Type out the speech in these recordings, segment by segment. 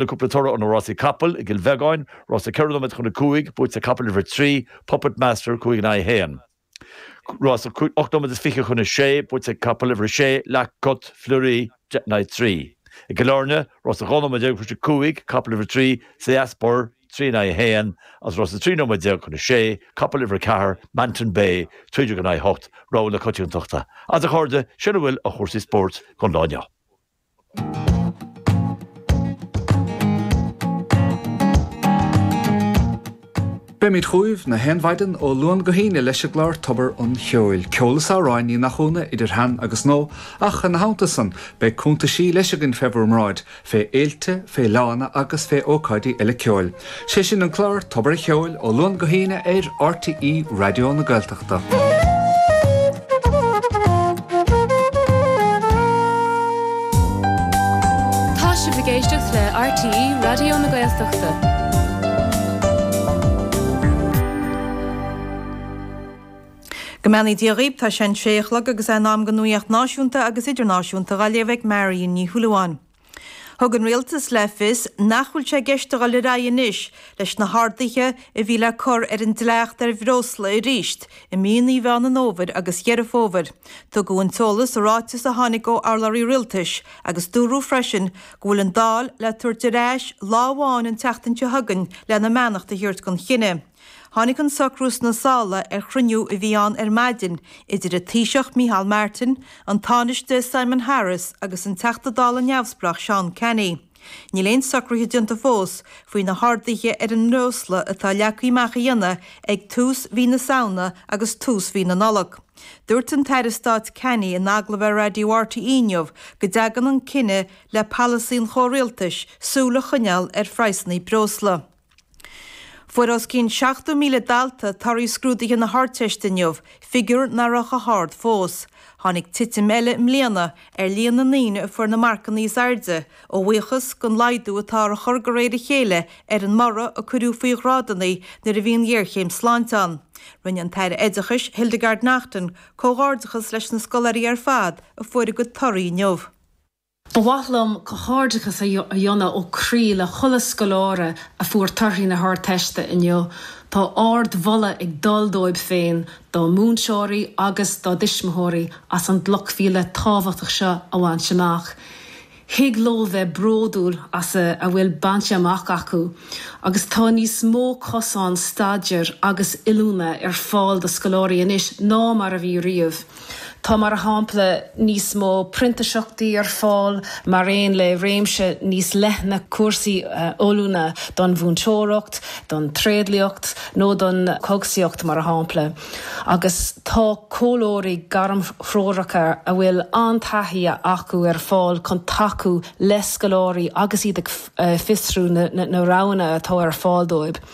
Le cúpla toradh ó na rásaí capall i gCill Bheagáin, rása ceithre nóiméad chun a cúig, buaite ag capall uimhir a trí, Puppet Master, cúig in aghaidh a haon. Rása ocht nóiméad is fiche chun a sé, buaite ag capall uimhir a sé, La Cote Fleurie, deich in aghaidh a trí. I gCill Áirne, rása dhá nóiméad déag chun a cúig, capall uimhir a trí, Seas Burr, trí in aghaidh a haon, agus rása trí nóiméad déag chun a sé, capall uimhir a ceathair, Manton Bay, trí déag in aghaidh a hocht, rogha na coitiantachta. Agus a chairde, sin a bhfuil ó chúrsaí spóirt don lá inniu. Beimid chughaibh gach aon mhaidin ó Luan go hAoine leis an gclár Tobar an Cheoil, ceol is amhráin, ní nach ionadh, idir shean agus nua, ach ina theannta san, beidh cuntaisí leis againn fé bhur mbráid, fé fhéilte, fé fhleánna agus fé ócáidí eile ceoil. 'Sé sin an clár Tobar a' Cheoil ó Luan go hAoine ar RTÉ Raidió na Gaeltachta. Tá sibh ag éisteacht le RTÉ Raidió na Gaeltachta. Go mbeannaí Dia dhaoibh, tá sé an sé a chlog agus é in am don nuaíocht náisiúnta agus idirnáisiúnta dá léamh ag Marion Ní Shúilleabháin. Thug an Rialtas le fios nach bhfuil sé i gceist a dhul ar aghaidh anois leis na harduithe a bhí le cur ar an dleacht ar bhreosla arís i míonnaí Mheán an Fhómhair agus Dheireadh Fómhair. Tugadh an t-eolas i ráiteas a tháinig ó urlabhraí rialtais agus dúradh freisin go bhfuil an Dáil le tabhairt ar ais lá amháin an tseachtain seo chugainn lena beannacht a thabhairt don chinneadh. Tháinig an socrú sna sála ar chruinniú a bhí ann ar maidin idir an Taoiseach Micheál Martin, an Tánaiste Simon Harris agus an Teachta Dála Neamhspleách Seán Canney. Níl aon socruithe déanta fós faoi na harduithe ar an mbreosla atá leagtha amach a dhéanamh ag tús mhí na Samhna agus tús mhí na Nollag. Dúirt an tAire Stáit Canney in agallamh ar Raidió RTÉ inniu go dtagann an cinneadh le polasaí an chomhrialtais súil a choinneáil ar phraghsanna breosla. Fuair os cionn 70,000 dalta torthaí scrúduithe na hArdteiste inniu, figiúr nach raibh chomh hard fós. Tháinig titim eile i mbliana ar líon na ndaoine a fuair na marcanna is airde a bhuíochas den laghdú atá á chur de réir a chéile ar an mborradh a cuireadh faoi ghrádanna nuair a bhí an ghéarchéim sláinte ann. Rinne an tAire Oideachais Hildegarde Naughton comhghairdeachas leis na scoláirí ar fad a fuair a gcuid torthaí inniu. Ba mhaith liom comhghairdeachas a dhéanamh ó chroí le chuile scoláire a fuair torthaí na hArdteiste inniu. Tá ard-mholadh ag dul dóibh féin, dá múinteoirí agus dá dtuismitheoirí as an gcloch mhíle tábhachtach seo a bhaint amach. Thig leo bheith bródúil as a bhfuil bainte amach acu agus tá níos mó cosán staidéir agus oiliúna ar fáil do scoláirí anois ná mar a bhí riamh. Tá, mar shampla, níos mó printiseachtaí ar fáil mar aon le réimse níos leithne cúrsaí oiliúna don mhúinteoireacht, don tréidliacht nó don chógaisíocht, mar shampla, agus tá comhairleoirí gairmthreoracha a bhfuil an-taithí acu ar fáil chun tacú le scoláirí agus iad ag fiosrú na roghanna atá ar fáil dóibh.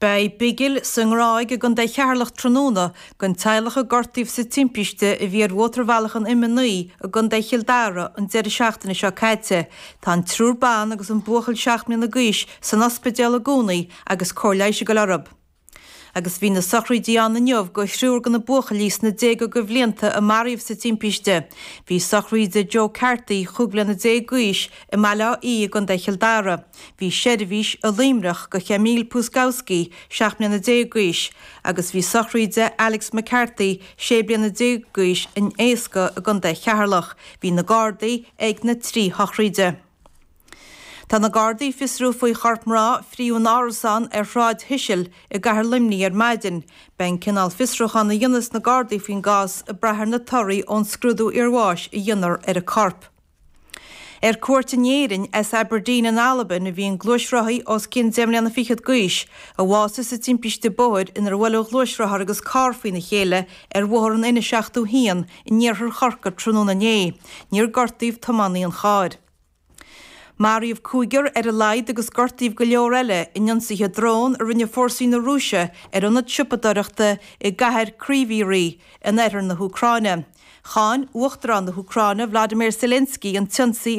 Beidh bigil sa nGráig i gContae Cheatharlach tráthnóna don teaghlach a gortaíodh sa timpiste a bhí ar mhótarbhealach an M9 i gContae Chill Dara an deireadh seachtaine seo caite. Tá an triúr ban agus an buachaill seacht mbliana d'aois san ospidéal i gcónaí agus cóir leighis ag dul orthu. Agus bhí na sochraídí ann inniu do thriúr de na buachaillí sna déaga de bhlianta a maraíodh sa timpiste. Bhí sochraid Joe Carthy, chúig bliana déag d'aois, i mBaile Átha Í i gContae Chill Dara. Bhí seirbhís i Luimneach do Emil Puskowski, 17 mbliana d'aois, agus bhí sochraid Alex McCarthy, 16 bliana d'aois, in Easca i gContae Cheatharlach. Bhí na Gardaí ag na trí shochraide. Tá na Gardaí ag fiosrú faoi chorp mná a fríothadh in árasán ar Shráid Cecil i gcathair Luimnigh ar maidin. Beidh an cineál fiosrúcháin a dhéanfas na Gardaí faoin gcás ag brath ar na torthaí ón scrúdú iarbháis a dhéanfar ar an gcorp. Ar cuairt in Éirinn as Aberdeen in Albain a bhí an gluaisrothaí os cionn deich mbliana fichead d'aois, a bhásaigh sa timpiste bóthair inar bhuail a ghluaisrothar agus carr faoina chéile ar Bhóthar an N71 in iarthar Chorcaí tráthnóna inné. Níor gortaíodh tiománaí an chairr. Maraíodh cúigear ar a laghad agus gortaíodh go leor eile in ionsaithe drón a rinne fórsaí na Rúise ar ionad siopadóireachta i gcathair Kryvyi Rih in oirthear na hÚcráine. Cháin Uachtarán na hÚcráine Vladimir Zelensky an t-ionsaí.